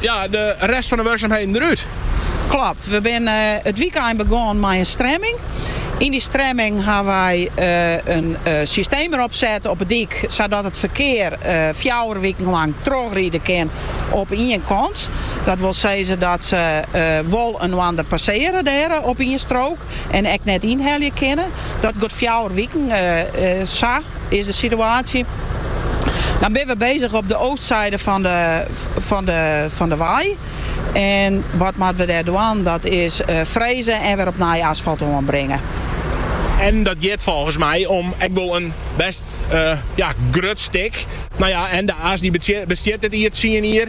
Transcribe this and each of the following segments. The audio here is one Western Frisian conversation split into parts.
Ja, de rest fan de wurksumheden derút. Klopt, we binne it wykein begûn mei in stremming. Yn dy stremming ha wy in systeem derop set op 'e dyk sadat it ferkear fjouwer wiken lang trochride kin op ien kant. Dat wol sizze dat se wol inoar passearje dêr op ien strook. en ek net ynhelje kinne. Dat got fjouwer wiken, sa is de situaasje. Dan binne we bezich op de oostseide fan de, fan de, fan de wei. En wat moatte we dêr dwaan? Dat is freze en wer op nij asfalt oanbringe. En dat giet folgens my om ek wol in bêst, ja, grut stik. No ja, en de As, dy bestiet dit jier tsien jier.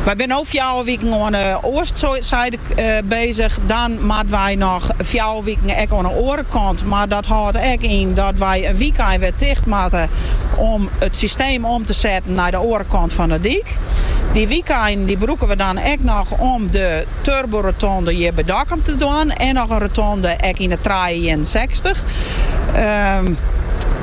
Wy binne no fjouwer wiken oan 'e oastsyde bezich. Dan moatte wy noch fjouwer wiken ek oan 'e oare kant. Mar dat hâldt ek yn dat wy in wykein wer ticht moatte om it systeem om te setten nei de oare kant fan 'e dyk. Dy wykeinen dy brûke we dan ek noch om de Turbo-rotonde hjir by Dokkum te dwaan en noch in rotonde ek yn de trije ienensechstich.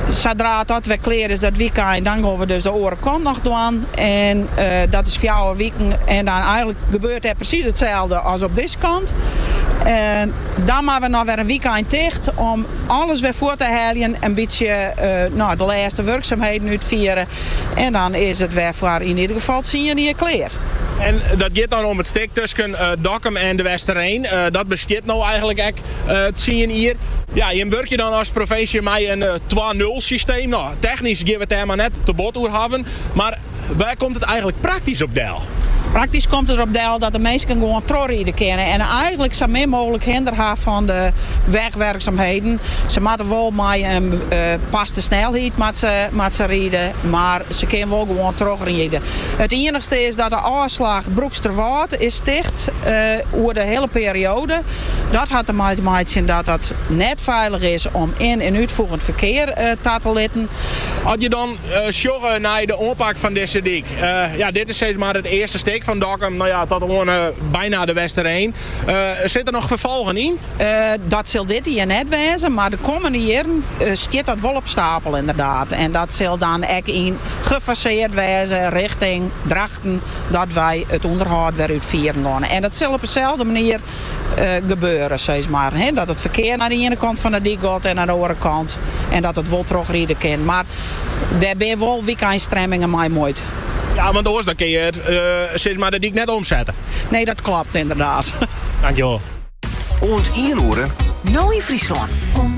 Sadra as dat wer klear is dat wykein, dan gon we dus de oare kant noch dwaan. En dat is fjouwer wiken en dan eigenlik gebeurt dêr presys itselde as op dizze kant. En dan moatte we noch wer in wykein ticht om alles wer fuort te heljen, in bytsje de lêste wurksumheden útfiere En dan is it wer foar yn ieder gefal tsien jier klear. En dat giet dan om it stik tusken Dokkum en De Westereen. Dat bestiet no eigenlik ek tsien jier. Ja, jim wurkje dan as provinsje mei in twa-nul-systeem. No, technysk gean we it dêr mar net te bot oer hawwen. Mar wêr komt it eigenlik praktysk op del? Praktysk komt it der op del dat de minsken gewoan trochride kinne en eigenlik sa min mooglik hinder ha fan de wegwerksumheden. Se moatte wol mei oanpaste snelheid moat se ride, mar se kin wol gewoan trochride. It iennichste is dat de ôfslach Broeksterwâld is ticht oer de hiele perioade. Dat hat dermei te meitsjen dat it net feilich is om yn en útfoegend ferkear ta te litten. As je dan Sjogge nei de oanpak fan dizze dyk. Ja, dit is sis mar it earste stik fan Dokkum no ja, tot oan byna de Westereen. Sit der noch ferfolgen yn? Dat sil dit jier net wêze, mar de kommende jierren stiet dat wol op stapel ynderdaad. En dat sil dan ek yn gefaseard wêze richting Drachten dat wy it ûnderhâld wer útfieren gonne. En dat sil op deselde manier gebeure, sis mar. Dat it ferkear nei de iene kant fan de dyk got en nei de oare kant en dat it wol trochride kin. Mar dêr binne wol wykeinstremmingen mei muoid. Ja, want oars dan kinne je it, sis mar, de dyk net omsette. Nee, dat klopt, inderdaad. Dankjewol. Oant ien oere. No yn Fryslân.